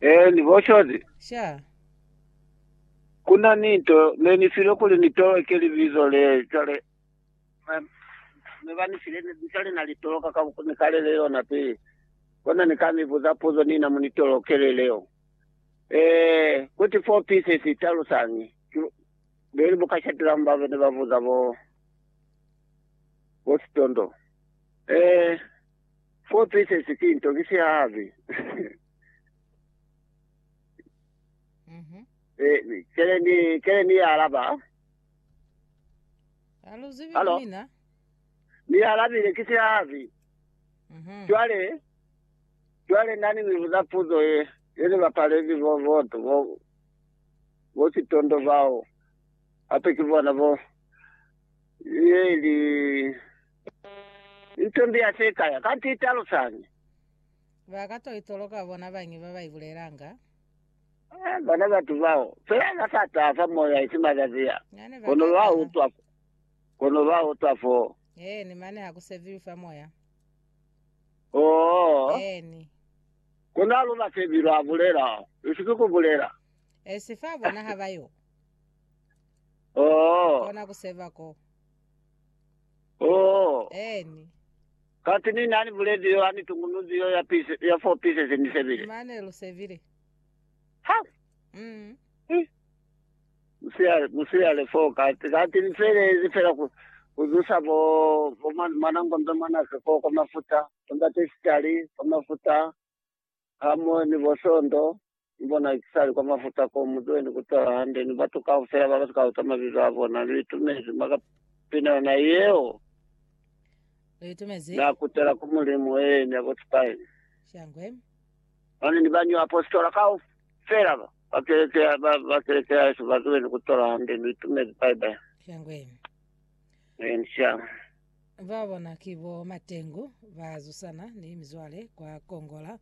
Eh, ni boshozi. Sha. Kuna ni nto ne ni file kuli ni toleke libizo le, cwale ba, ne ba ni file, ne- cwale na li toloka ka ku ni kalele yona pili. Kona ni ka mi buza puzo nina mu ni tolokele leo. Eh, kuti four pieces i talusañi? Ki bu- beli buka Shadram ba ne ba buza bo, bo Sitondo. Eh, Four pieces ki nto ki sihahabi. Eh, kele ni kele ni ya alaba. Aluzivi Hello? ku mina. Ni ya alabile ki sihahabi. Mhm. Jwale jwale nani ni buza puzo ye ye ni bapalezi bo boto bo bo sitondo bao. Ape ki bona bo ye li Nto mbi ya se kaya, kanti i talusañi? Ba ka to itoloka bona bañi ba ba i bulelanga? Eh, bona batu bao. Fela ba sa taha fa moya, isi mazazi a. Na ne ba Kono ka lwa taha. utwa, kono lwa utwa fo. Eeni, mane ha ku sebiwi fa moya. Oo, Eeni. kono ha lu ba sebi, lwa bulela. Isi ki ku bulela. E si fa bona ha ba yo Oo, kona ku seba ko. Oh, Eeni. kati Ni nani buledi yo ani tungunuzi yo ya piece, ya four pieces Ni sebile. Mane lu sebile. Ha! Mm. Eh. Musiale, musiale four kati, kati Ni felezi fela ku, ku zusa bo, bo mwa, mwana ngombe mwanake ko, kwa mafuta, tonda testali, kwa mafuta, Hamoho ni bo Sondo, ni bona ki sali kwa mafuta ko mu tweni ku tola hande ni batu kaufela ba ba si ka uta mabizo a bona. Lu itumezi maka pinana yeo Lu itumezi? na kutela ku Mulimu, ee, ni ya bo Spain. Shangwe. Mane ni bañwi apositola kaufela ba ba keleke ya, ba, ba keleke ya Yesu ba tweni ku tola hande. Lu itumezi, bye bye. Shangwe. Ee, ni shangwe. Ba bona ki bo Matengu ba zusana ni mizwale kwa Kongola.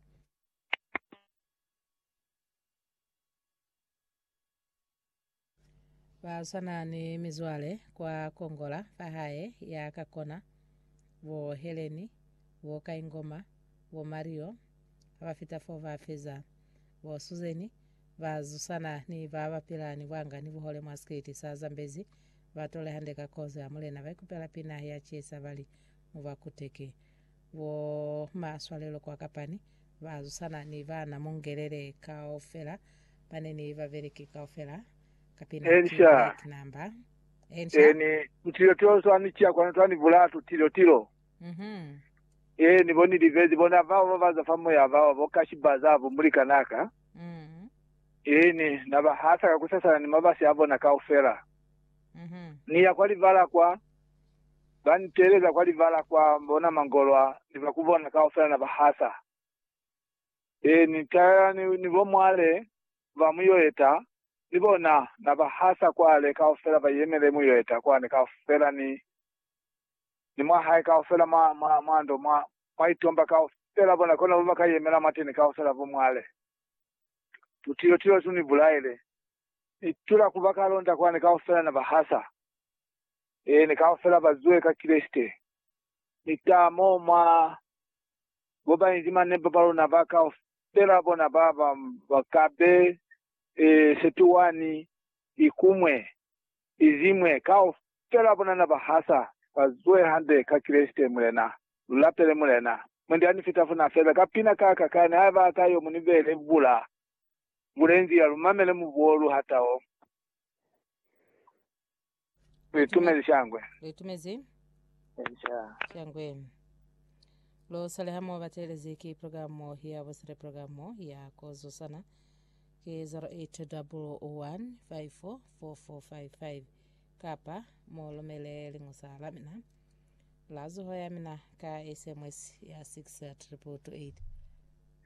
Ba swana ni mizwale kwa Kongola fa hae ya ka kona. Bo Heleni, bo Kaingoma, bo Mario ha ba fita fo ba feza. Bo Suzeni Ba zusana ni ba ba pila ni bwanga ni buhole mwa sikiti sa Zambezi ba tole hande ka kozo ya Mulena. Ba ikupela pina ya cisa ba li, Mu ba kuteke. Bo ma swalelo kwa kapani ba zusana ni ba na mungelele kaufela ba ne ni ba beleki kaufela ka pina ki Ensha, Black Number. Ensha. Eni, mutilo tilo swa ni ciya kwanu twa ni bulatu, tilo, tilo. Mhm. Eni, bo ni libezi bona bao ba ba za fa moya bao, bo kashi ba za bo mulikanaka. Ini, na ba hasa ka kusasana ni mabasi a bona kaufela. Ni ya kwa libala kwa, ba nteeleza kwa libala kwa, bona mangolo a, ni ba ku bona kaufela na ba hasa. Ini, taela ni, ni bo mwale ba muyoeta, ni bona, na ba hasa kwale kaufela, ba yemele muyoeta kwani kaufela ni, ni mwa hae kaufela mwa, mwa, mwa ndo, mwa, mwa itomba kaufela, bona, kono bo baka yemela mwateni kaufela bo mwale. Tutilo tilo tu ni bulaile, ni tula ku ba kalonda kwani, kaufela na ba hasa. Eeni, kaufela ba zwe ka Kreste. Ni ta mo mwa bo ba inzi mane ba baluna ba kaufela, bona, ba, ba, ba ka be, e, setuwani ikumwe. Iziñwe kaufela bonana bahasa bazuhe hande ka Kreste, Mulena. Lulapele Mulena. Mwendi anifitafuna fela ka pina ka ka kani haiba aka yo munibele bula bulenzila lumamele mubuo lu hataho. Luitumezi shangwe. Luitumezi shangwe. Lo sale hamo batelezi ki programo ya busele programo ya kozusana. ki 0800154455 kapa mu lumele liñusa la mina la zuho ya mina ka SMS ya 6 ya 888.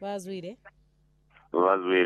Ba zwile. Ba zwile.